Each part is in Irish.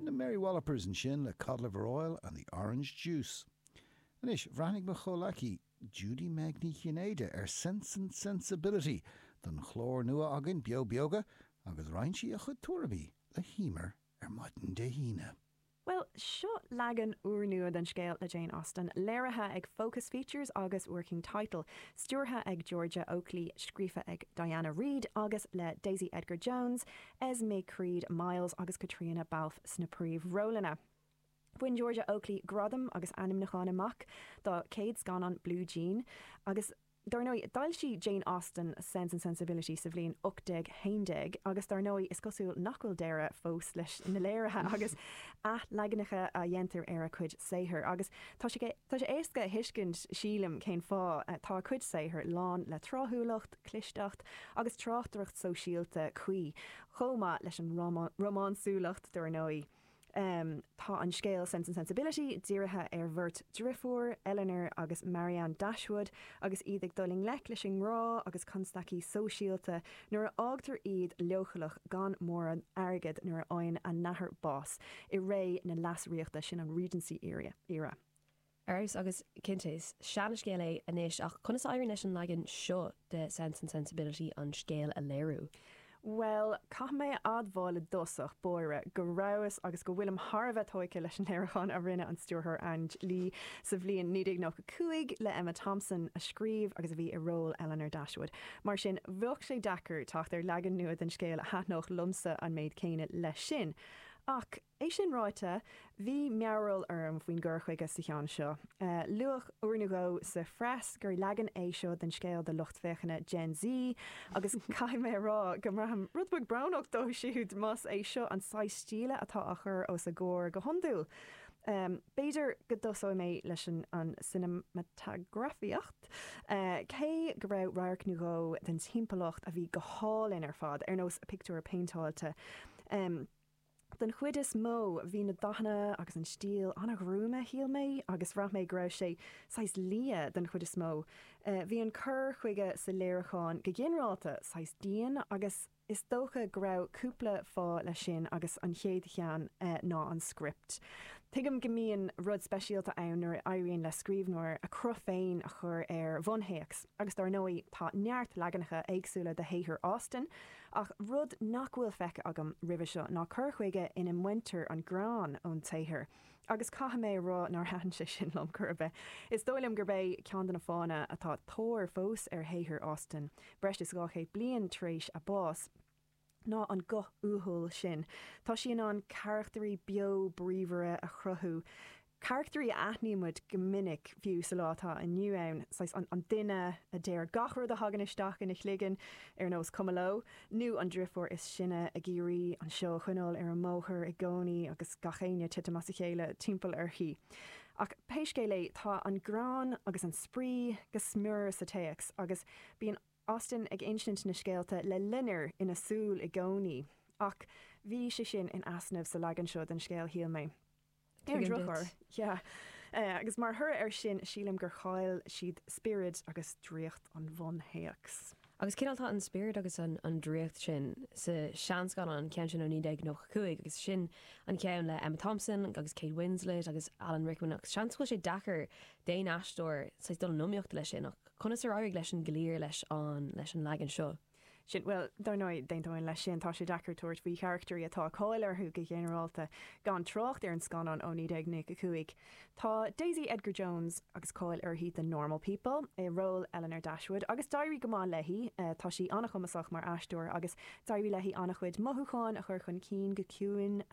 Na Mary Wallopers ansin le Cod Liver Oil and the Orange Juice. Anois, bhreathnaigh mo chomhleacaí, Judy Meg Ní Chinnéide, ar Sense and Sensibility don chlár nua againn, Beo Beoga, agus roinn sí a chuid tuairimí le hEmer ar maidin Dé hAoine. Bhuel, seo leagan úrnua den scéal le Jane Austen, léirithe ag Focus Features agus Working Title, stiúrtha ag Georgia Oakley, scríofa ag Diana Reid agus le Daisy Edgar Jones, Esme Creed Miles agus Caitríona Balfe sna príomhrólanna. Bhain Georgia Oakley gradam agus ainmniúchán amach dá céad scannán Blue Jean agus Dar ndóigh, d'fhoilsigh Jane Austen Sense and Sensibility sa bhliain 1811 agus dar ndóigh, is cosúil nach bhfuil deireadh fós leis na léirithe agus athleaganacha a dhéantar ar a cuid saothar. Agus tá sé éasca a thuiscint, sílim, cén fáth. Tá a cuid saothar lán le tráthúlacht, clisteacht agus tráchtaireacht sóisialta cuí, chomh maith leis an rómánsúlacht, dar ndóigh. Tá an scéal Sense and Sensibility dírithe ar bheirt driofúr, Elinor agus Marianne Dashwood, agus iad ag dul i ngleic leis an ngrá agus constaicí sóisialta nuair a fhágtar iad leochaileach gan mórán airgead nuair a fhaigheann a n-athair bás, i ré na Leasríochta, sin an Regency Era. Ar fheabhas, agus cinnte is seanascéal é anois, ach conas a éiríonn leis an leagan seo de Sense and Sensibility an scéal a léiriú? Bhuel, caithfidh mé a admháil i dtosach báire go rabhas agus go bhfuilim thar a bheith tóigthe leis an léiriúchán a rinne an stiúrthóir Ang Lee sa bhliain 1995 le Emma Thompson, a scríobh agus a bhí i ról Elinor Dashwood. Mar sin, bheadh sé deacair teacht ar leagan nua den scéal a thaitneodh liomsa an méid céanna leis sin. Ach. É sin ráite, bhí mearbhall orm faoin gcur chuige sa cheann seo. Luadh uair nó dhó sa phreas gur leagan é seo den scéal do lucht féachana Gen Z agus caithfidh mé a rá go mbraithim rud beag brónach dóibh siúd más é seo an saghas stíle atá á chur os a gcomhair go hiondúil. B'fhéidir go dtosóidh mé leis an gcineamatagrafaíocht, cé go raibh radharc nó dhó den timpeallacht a bhí go hálainn ar fad, ar nós pictiúir péinteáilte. Den chuid is mó, bhí na dathanna agus an stíl an-ghruama, shíl mé, agus bhraith mé go raibh sé saghas liath den chuid is mó. Bhí an cur chuige sa léiriúchán go ginearálta saghas dian agus is dócha go raibh cúpla fáth leis sin agus an chéad cheann ná an script. Tuigim go mbíonn rud speisialta ann nuair a éiríonn le scríbhneoir a cruth féin a chur ar bhunthéacs agus dar ndóigh tá neart leaganacha éagsúla de shaothar Austen, Ach rud nach bhfuil feicthe agam roimhe seo ná cur chuige ina mbaintear an greann ón tsaothar, agus caithfidh mé a rá nár thaitin sé sin liom chor ar bith. Is dóigh liom gurb é ceann de na fáthanna atá tóir fós ar shaothar Austen, breis is dhá chéad bliain tar éis a báis, ná an guth uathúil sin. Tá sí in ann carachtairí beo bríomhara a chruthú, carachtairí a aithnímid go minic fiú sa lá atá inniu ann, saghas an duine a deir gach rud a thagann isteach ina chloigeann, ar nós cuma leo, nó an driofúr is sine ag iarraidh an seó a choinneáil ar an mbóthar i gcónaí agus gach aon ní ag titim as a chéile timpeall uirthi. Ach pé scéal é, tá an greann agus an spraoi go smior sa téacs agus bíonn Austen ag insint na scéalta le loinnir ina súil i gcónaí. Ach bhí sé sin in easnamh sa leagan seo den scéal, shíl mé. Ar an Tuigim duit. drochuair, yeah. Agus mar thoradh air sin, sílim gur chaill siad spiorad agus draíocht an bhunthéacs. Agus cineál tá an spiorad agus an draíocht sin sa seanscannán, an ceann sin ó 1995, agus sin an ceann le Emma Thompson agus Kate Winslet agus Alan Rickman ach seans go bhfuil sé deacair d'aon aisteoir saghas dul in iomaíocht leis sin ach conas ar éirigh leis an gcliar leis an leis an leagan seo? sin. Bhuel, dar ndóigh, d'aontóinn leis sin, tá sé deacair tabhairt faoi charachtairí atá cáil orthu go ginearálta, gan trácht ar an scannán ó 1995. Tá Daisy Edgar-Jones, agus cáil uirthi do Normal People, i ról Elinor Dashwood, agus d'éirigh go maith léi, tá sí an-chumasach mar aisteoir, agus d'éirigh léi an-chuid mothúcháin a chur chun cinn go ciúin,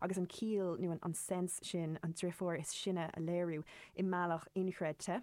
agus an ciall, nó an sense sin, an driofúr is sine a léiriú, i mbealach inchreidte.